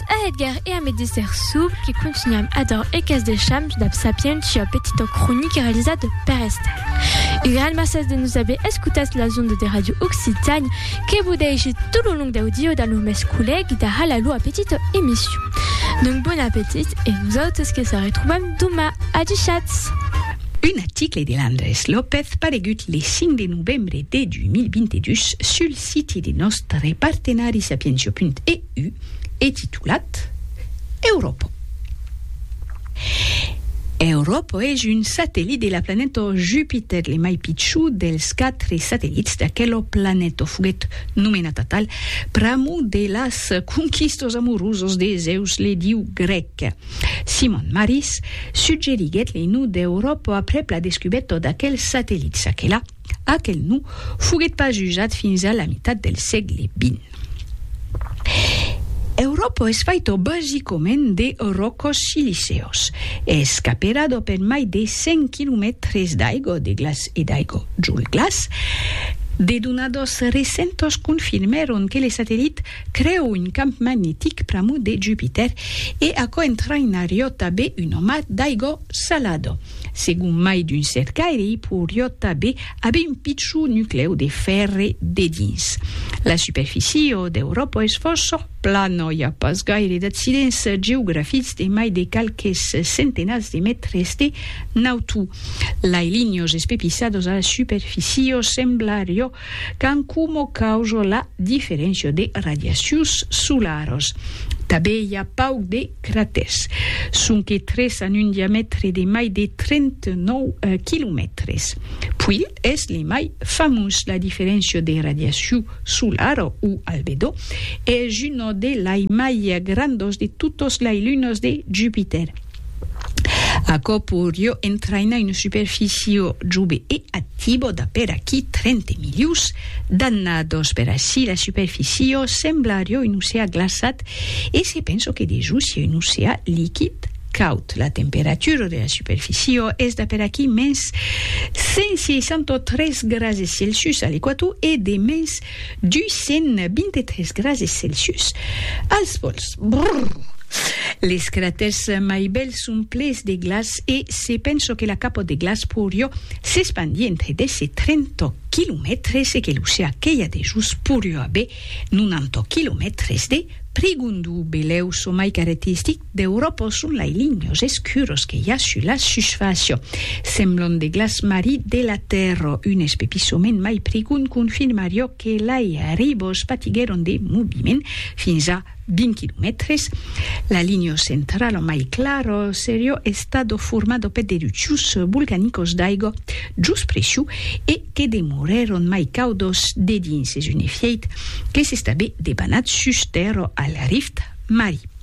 Eth a Edgar e a me déser suble que contunham ador eth cas des shams dab Sapientia, petita cronica realizada per Estal. Un gran mercés de nos aver escotats las ondes de Radio Occitània que vos dèishe tot lo long dau dia damb lo mès collègue da hala lua petita emission. Donc bon appetit e nosautes que se retrobam doma. Adushatz! Un article de Landrés López paregut le 5 de novembre de 2022 sul siti de nòstre partenari Sapientia.e. EU e titulat Europò. Europò es un satellit de la planeta Jupitèr, le mai pichut dels quatre satellits d'aquela planeta. Foguèt nomenat atal pr'amor de las conquistas amorosas de Zèus, le diu grèc. Simon Maris suggeriguèt le nom d'Europò aprèp la descubèrta d'aquel satellit. Çaquelà, Aquel nom foguèt pas usat fins a la mitat del sègle vint. Euròpa es faita basicament de ròcos siliceus. Es caperada per mai de 100 quilomètres d'aigua de glaç e d'aigua d'jol glaç. De donadas recentas confirmèron que le satellit creu un camp magnetic pr'amor de Jupitèr e aquò entraïnariá tanben una mar d'aigua Salado. Segon mai d'un cercaire, i poiriot tanben aver un pichon nuclèu de fèrre dedins. La superficie d'Euròpa es fòrça plana, i a pas gaire d'accidents geografics de mai de qualques centenats de mètres de nautu. Lai linhas espepiçadas a la superficie semblarió Qu'an coma causa la diferéncia de radiacions solaras. Tanben i a pauc de cratèrs. Sonque tres an un diamètre de mai de 39 quilomètres. Puill es le mai famós. La diferéncia de radiacion solara o albedó es una de lai mai grandas de totas lai lunas de Jupitèr. Aquò poirió entrainar una superficio jove e activo d'a per aquí 30 milius d'annados. Per ací la superficio semblarió un oceà glaçat e se penso que dejús siá un oceà liquid caud. La temperatura de la superficio es d'a per aquí mens 163 grases Celsius a l'equator e de mens 223 grases celsius als pòls. Brrr! Les cratèrs mai bèls son ples de glaç e se penso que la capòt de glaç porió s'espandir entre 10 e 30 quilomètres e que l'oceà que i a dejós porió aver 90 quilomètres de prigondó belèu çò mai caretistic Deu repos son lai linhos escuros que i a sus la susfàcia. Semblon de glaç marit de la tèrra, un espepissament mai prigond confirmariá que lai ribos patiguèron de moviment fins a 20 quilomètres. La linha centrala mai clara seriá estada formada per d'erupcions volcanicas d'aiga jos pressiu e que demorèron mai caudas dedins es un efièit que s'estabé debanat sus tèrra al Rift Mari.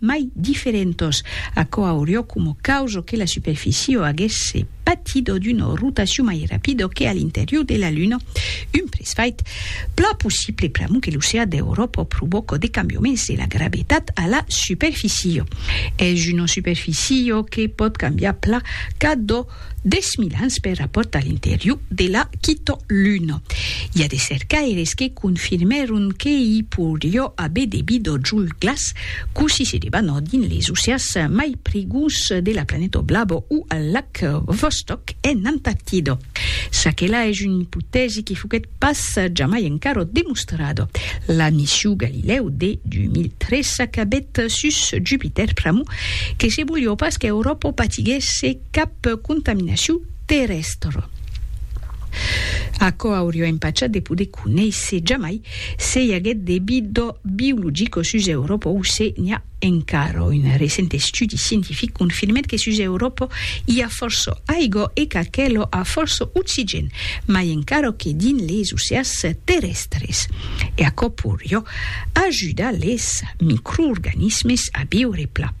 mai diferentos. Aquò aurió coma causa que la superficiò aguèsse patidó d'una rotacion mai rapida que a l'interior de la Luna, un presfait plan possible pr'amont que l'oceà d'Euròpa provòca de cambiaments de la gravetat a la superficiò. Es una superficiò que pòt cambiar plan cadó Dètz mil ans per la pòrta a l'interior de la Quito Luna. I a de cercaires que confirmèron que i poirió aver de bidò jol glaç cossí se debanò dins les oceàs mai prigons de la planeta Oblabo o al lac Vostok en Antartida. Çaquela es una ipotèsi que foguèt pas jamai encara demostrada. La mission Galileo de 2003 s'acabèt sus Jupitèr pr'amor que se volió pas qu'Euròpa patiguèsse Cap contaminacion terrèstre. Aquò auriá empachat de poder conéisser jamai se i aguèt de vida biologica sus Euròpa o se n'i a encara. Un recent estudi scientific confirmèt que sus Euròpa i a fòrça aiga e qu'aquela a fòrça oxigèn, mai encara que dins les oceans terrèstres. E aquò podriá ajudar les microorganismes a viure plan.